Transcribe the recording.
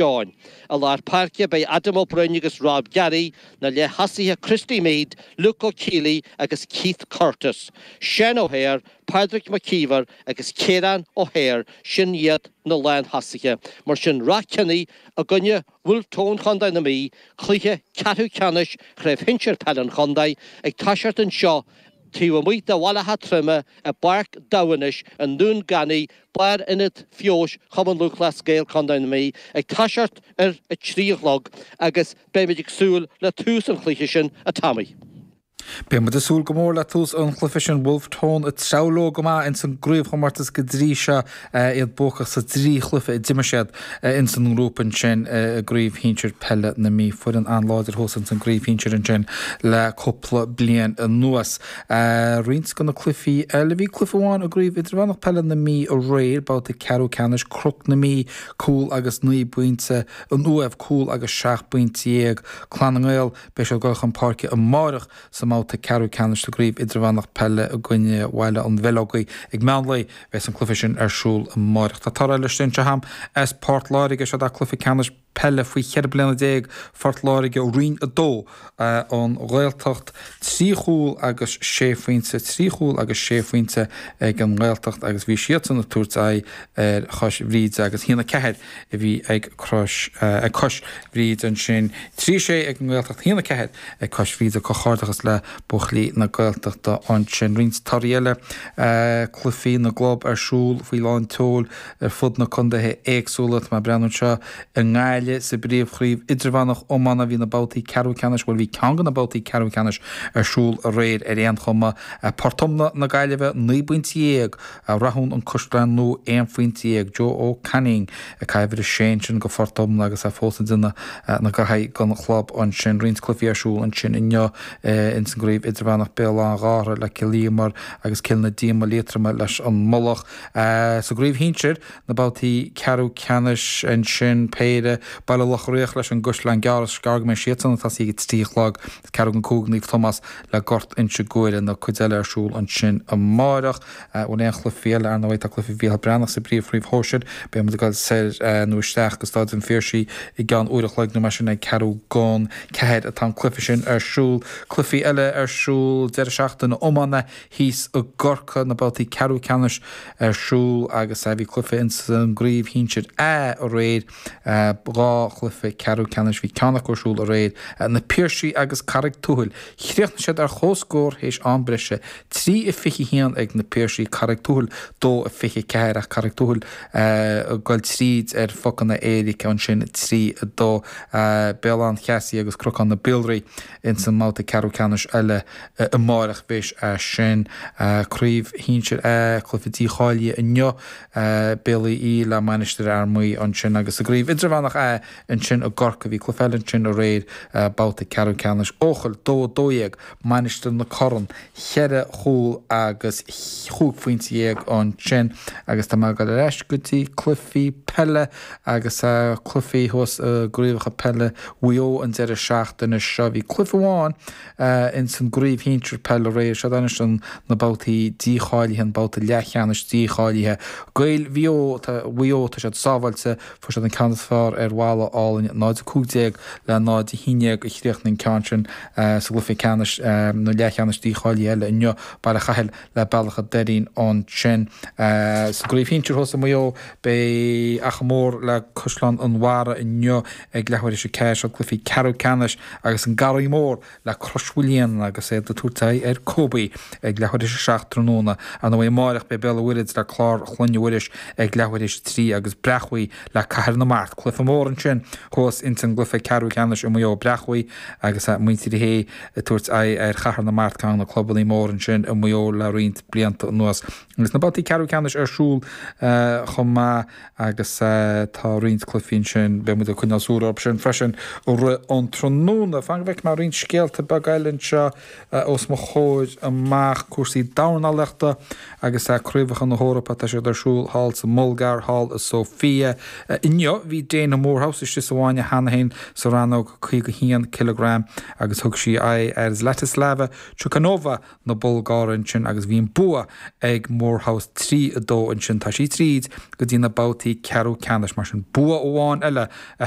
Sheáin. I lár páirce beidh Adam Ó Broin agus Rob Garry, na leath-thosaithe Christy Meade, Luke Ó Caollaí agus Keith Curtis. Seán O'Hare, Pádraig Mac Íomhair agus Ciarán O'Hare, sin iad na lán-thosaithe. Mar sin Ráth Cheannaigh i gcoinne Bhulf Tón Chondae na Mí, cluiche ceathrú ceannais Chraobh Shinsir Peile an Chondae ag toiseacht anseo taobh amuigh de Bhaile Átha Troime i bPáirc Devenish i nDún Ganaí Lárionad Feabhais Chumann Lúthchleas Gael Contae na Mí ag toiseacht ar a trí a chlog agus beidh muid ag súil le tús an chluiche sin, a Tommy. Beidh muid ag súil go mór le tús an chluiche sin, Bhulf Tón ag treabhadh leo go maith ins an gcraobhchomortas go dtrí seo, iad buacach sa dtrí chluiche a d'imir siad ins an ngrúpa ansin i gCraobh Shinsir Peile na Mí, foireann an-láidir thuas ins an gCraobh Shinsir ansin le cúpla bliain anuas. Roinnt de na cluichí eile, bhí cluiche amháin i gCraobh Idirmheánach Peile na Mí aréir, babhta ceathrú ceannais Cnoc na Mí, cúl agus naoi bpointe, an Uaimh, cúl agus seacht bpointe dhéag, Clann na nGael. Beidh siad ag dul chun páirce amárach sa mbabhta ceathrú ceannais sa gCraobh Idirmheánach Peile i gcoinne Bhaile an Bheileogaigh ag meán lae. Bheas an cluiche sin ar siúl amárach. Tá torthaí eile sínte chugam as Port Láirge. Seo é cluiche ceannais. peile faoi 14 bliana, Phort Láirge, Roinn 2, An Ghaeltacht, trí chúl agus sé phointe, trí chúl agus sé phointe ag an nGaeltacht agus bhí siadsan ag tabhairt aghaidh ar Chois Bhríde agus haon a ceathair a bhí ag Cois Bhríde ansin, trí a sé ag an nGaeltacht, haon a ceathair ag Cois Bhríde, comhghairdeachas le buachaillí na Gaeltachta ansin. Roinnt torthaí eile, Cluichí na gClub ar siúl faoi lán tseoil. ar fud na condaetha éagsúla. Tá mé ag breathnú anseo i nGaillimh, sa bpríomhchraobh idirmheánach iomána bhí na babhtaí ceathrú ceannais, bhuel bhí ceann de na babhtaí ceathrú ceannais ar siúl aréir ar aon chuma. Port Omna na Gaillimhe naoi bpointe dhéag, Rathún an Caisleán Nua aon phointe dhéag. Joe Ó Cainín ag caitheamh uimhir a sé ansin do Phort Omna agus é fós ag déanamh na gnaithe don chlub ansin. Roinnt cluichí ar siúl ansin inniu insan gcraobh idirmheánach, Béal Átha Ghártha le Cill Íomair agus Cill na Díoma Liatroma leis an Mullach. Sa gcraobh shinsir, na babhtaí ceathrú ceannais ansin, péire, Baile Locha Riach leis an gCaisleán Gearr agus is gearr go mbeidh siadsan ag tosaí ag a trí a chlog, is ceathrú don cúig Naomh Tomás le Gort Inse Guaire. An chuid eile ar siúl ansin amárach? An bhfuil aon chluichí eile? Ar ndóigh, tá cluiche Mhícheál Breathnach sa bpríomhchraobh shóisir. Beidh muid ag dul soir nó isteach go Stáid an Phiarsaigh i gceann uair a chloig nó mar sin, ag ceathrú don ceathair atá an cluiche sin ar siúl. Cluichí eile ar siúl deireadh seachtaine, iomána, thíos i gCorcaigh na babhtaí ceathrú ceannais ar siúl agus a bhí cluife ins an gcraobh shinsir A aréir. Dhá chluife ceathrú ceannais bhí ceann acu ar siúl aréir. Na Piarsaigh agus Carraig Tuathail. Chríochnaigh siad ar chomhscór théis am breise. Trí a fiche haon ag na Piarsaigh, Carraig Tuathail dó a fiche ceathair ach Carraig Tuathail ag goil tríd ar phucanna éirice ansin trí a dó. Béal Átha an Cheasaigh agus Cnocán na Biolraí. Ins an mbabhta ceathrú ceannais eile amáireach a bheas sé sin, craobh shinsir A, cluiche dícháilithe inniu, Béal Aoidh í le Mainistir Fhear Maí ansin agus sa gcraobh idirmheánach A ansin i gCorcaigh bhí cluiche eile ansin aréir, babhta ceathrú ceannais Eochaill, dó a dó dhéag, Mainistir na Corann, cheithre chúl agus chúig phointe dhéag ansin agus tá mé a' gabháil ar ais go dtí cluichí peile. Agus tá cluichí thuas i gcraobhacha peile Mhaigh Eo an deireadh seachtaine seo. Bhí cluiche amháin ins an gcraobh shinsir peile aréir. Siad anois na babhtaí dícháilithe, an babhta leathcheannais dícháilithe. Gaeil Mhaigh Eo, tá Mhaigh Eo, tá siad sábháilte. Fuair siad an ceann is fearr ar Bhalla Álainn, 0-15 le 0-11 a chríochnaigh an ceann sin sa gcluiche ceannais, nó leathcheannais dícháilithe eile inniu. Baile Chathail le Bealach an Doirín ansin. Sa gcraobh shinsir thuas i Maigh Eo, beidh Achadh Mór le Caisleán an Bharraigh inniu ag leathuair théis a ceathair. Seo cluichí ceathrú ceannais agus an Garraí Mór le Crois Mhaoilíona agus iad ag tabhairt aghaidh ar Kobe ag leathuair théis a seacht tráthnóna. Ar ndóigh amáireach beidh Béal an Mhuirthead le Clár Chlainne Mhuiris ag leathuair théis a trí agus Bréachmhaigh le Cathair na Mart. Cluiche mór ansin thuas ins an gcluiche ceathrú ceannais i Maigh Eo, Bréachmhaigh agus muintir Uí Shé ag tabhairt aghaidh ar Chathair na Mart, ceann de na clubannaí mór ansin i Maigh Eo le roinnt blianta anuas. Agus na babhtaí ceathrú ceannais ar siúl chomh maith agus tá roinnt cluichí ansin, beidh muid ag coinneáil súil orthu sin freisin i rith an tráthnóna. Fan go bhfeicfidh mé roinnt scéalta beaga eile anseo os mo chomhair amach, cúrsaí dornálaíochta agus tá Craobhacha na hEorpa tá siad ar siúl thall sa mBulgáir thall i Sofia inniu. Bhí Daina Moorehouse istigh sa bhfáinne cheana féin sa rannóg 51 cileagram agus thug sí aghaidh ar Zlatislava Chukanova na Bulgáire ansin agus bhí an bua ag Moorehouse 3-2 ansin. Tá sí tríd go dtí na babhtaí ceathrú ceannais mar sin bua amháin eile a